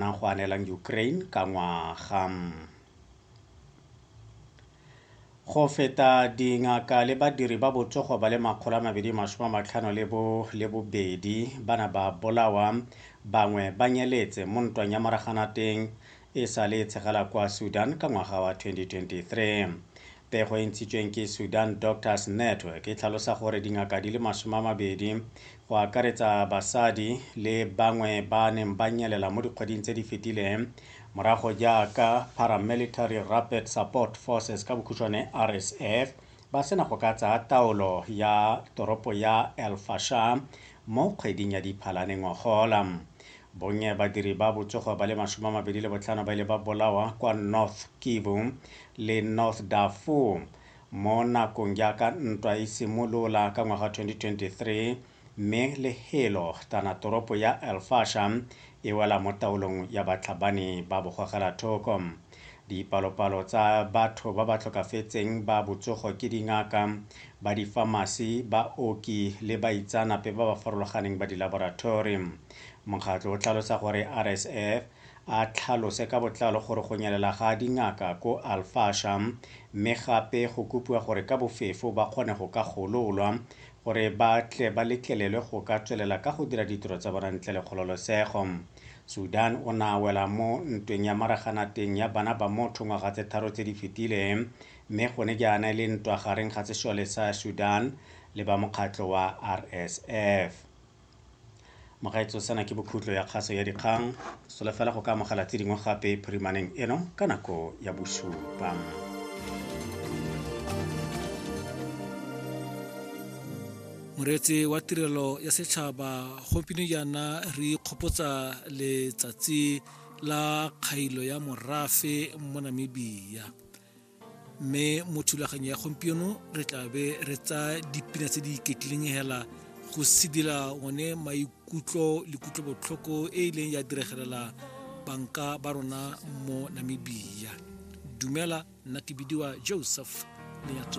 nang go anelang Ukraine ka ngwaga. Go feta dingaka le badiri ba botsogo ba le makgolo a mabedi masome a matlhano le bo le bobedi ba na ba bolawa bangwe ba nyeletse mo ntwang ya moraganateng e sa le e tshegela kwa Sudan ka ngwaga wa 2023. Pego e ntshitsweng ke Sudan Doctors Network e tlhalosa gore dingaka di le masome a mabedi go akaretsa basadi le bangwe ba neng ba nyelela mo dikgweding tse di fetileng morago jaaka Paramilitary Rapid Support Forces ka bokhutshwane RSF ba sena go ka tsaya taolo ya toropo ya El Fasher mo kgweding ya Diphalane ngogola. Bonnye badiri ba botsogo ba le masome a mabedi le botlhano ba ile ba bolawa kwa North Kivu le North Darfur Mo nakong jaaka ntwa e simolola ka ngwaga 2023 mme le helo tana toropo ya El Fasher e wela mo taolong ya batlhabani ba bogogelathoko. Dipalopalo tsa batho ba ba tlhokafetseng ba botsogo ke dingaka, ba difamasi, baoki le baitsanape ba ba farologaneng ba dilaborathori. Mokgatlho o tlhalosa gore RSF a tlhalose ka botlalo gore go nyelela ga dingaka ko Al Fasher mme gape go kopiwa gore ka bofefo ba kgone go ka gololwa gore ba tle ba letlelelwe go ka tswelela ka go dira ditiro tsa bona ntle le kgololosego. Sudan o na wela mo ntweng ya maraganateng ya bana ba motho ngwaga tse tharo tse di fetile mme gone jaana e le ntwa gareng ga sesole sa Sudan le ba mokgatlho wa RSF. Mogaetsho sena ke bokhutlo ya kgaso ya dikgang. Solofela go ka amogela tse dingwe gape phirimaneng eno ka nako ya bosupa. moreetsi wa tirelo ya setšhaba gompieno jaana re ikgopotsa letsatsi la kgailo ya morafe mo namibia mme mo thulaganyo ya gompieno re tla be re tsa dipina tse di iketlileng hela go sedila one maikutlo le kutlobotlhoko e e leng ya diregelela banka ba rona mo namibia dumela nna ke bidiwa joseph lenyatso